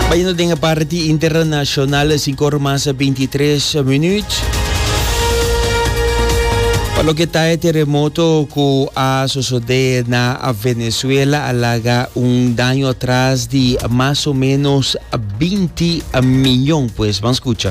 Baiendo den a parti internacional, e cinco ora mas bintitres minuut. Pa loke ta e terremoto ku a sosodé na Venezuela, a laga un daño atras di mas o menos binti miyon, pues. Ban skucha.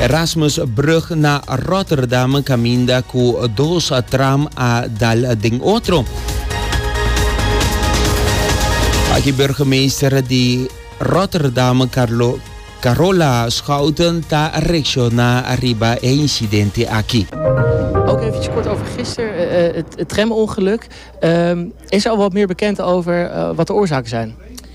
Erasmusbrug na Rotterdam caminda cu dos tram a dal den otro. Aki burgemeester di Rotterdam, Carlo, Carola Schouten, ta reacciona riba e incidente aki. Ook eventjes kort over gisteren, eh, eh, het, het tramongeluk. Ehm, is er al wat meer bekend over eh, wat de oorzaken zijn?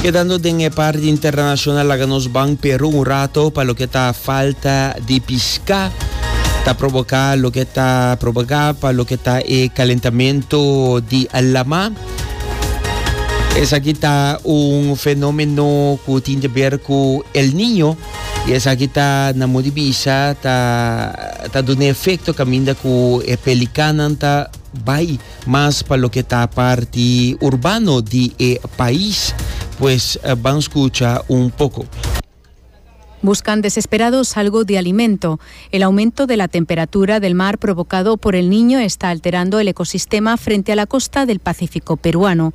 Kedando den e parti internashonal laga nos ban Peru un rato pa loke ta falta di pishká ta proboká loke ta proboká pa loke ta e kalentamentu di lama. Esaki ta un fenómeno ku tin te ber ku El Niño. Y esaki ta, nan modo di bisa, ta, ta duna e efecto caminda cu e pelicannan ta bay mas pa loke ta parti urbano di e pais. Pues ban scucha un poco. Buscan desesperados algo di alimento. El aumento de la temperatura del mar provocado por El Niño está alterando el ecosistema frente a la costa del Pacífico peruano.